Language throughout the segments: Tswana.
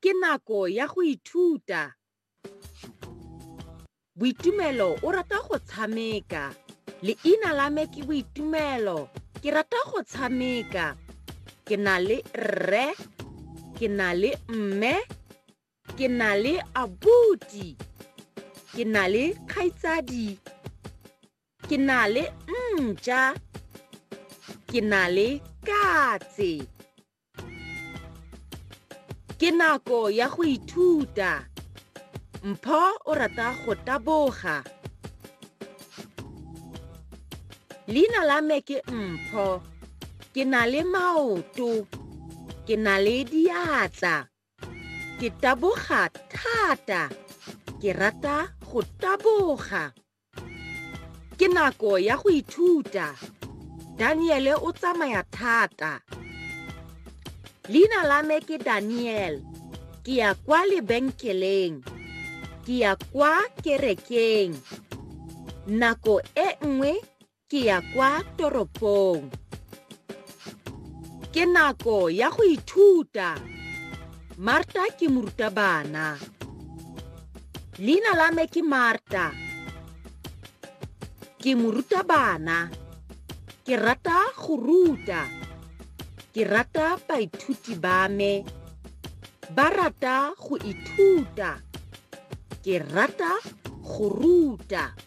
Ke nako ya go ithuta. Boitumelo o rata go tshameka. Leina la me ke Boitumelo. Ke rata go tshameka. Ke na le rre. Ke na le mme. ke na le abuti ke na le kgaitsadi ke na le ntja ke na le katse ke nako ya go ithuta mpho o rata go taboga leina la me ke mpho ke na le maoto ke na le diatla ke taboga thata ke rata go taboga ke nako ya go ithuta daniele o tsamaya thata leina la me ke daniel ke ya kwa lebenkeleng ke ya kwa kerekeng nako e nngwe Ke ya kwa toropong. Ke nako ya go ithuta. Marta ke morutabana. Leina la me ke Marta. Ke morutabana. Ke rata go ruta. Ke rata baithuti ba me. Ba rata go ithuta. Ke rata go ruta.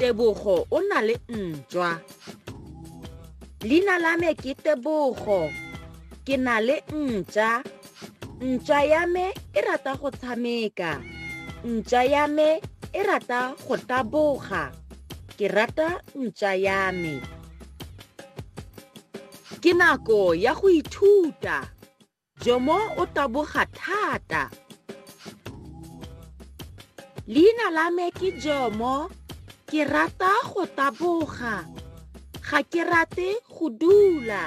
tebogo o na le ntšwa leina la me ke tebogo ke na le ntša ntša ya me e rata go tshameka ntša ya me e rata go taboga ke rata ntša ya me ke nako ya go ithuta Jomo o taboga thata. Leina la me ke Jomo. Ke rata go taboga. Ga ke rate go dula.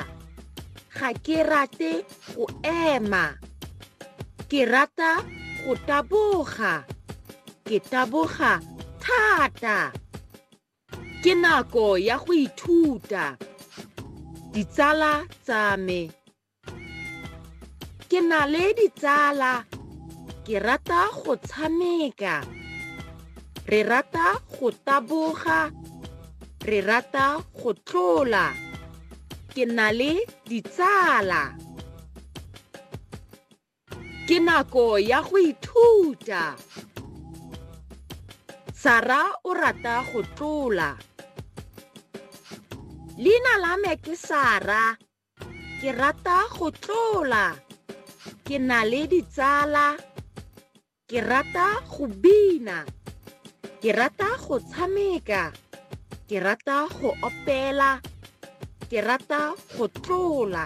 Ga ke rate go ema. Ke rata go taboga. Ke taboga thata. Ke nako ya go ithuta. Ditsala tsa me. ke na le ditsala ke rata go tshameka re rata go taboga re rata go tlola ke na le ditsala ke nako ya go ithuta sara o rata go tlola leina la me ke sara ke rata go tlola ke na le ditsala ke rata go bina ke rata go tshameka ke rata go opela ke rata go tlola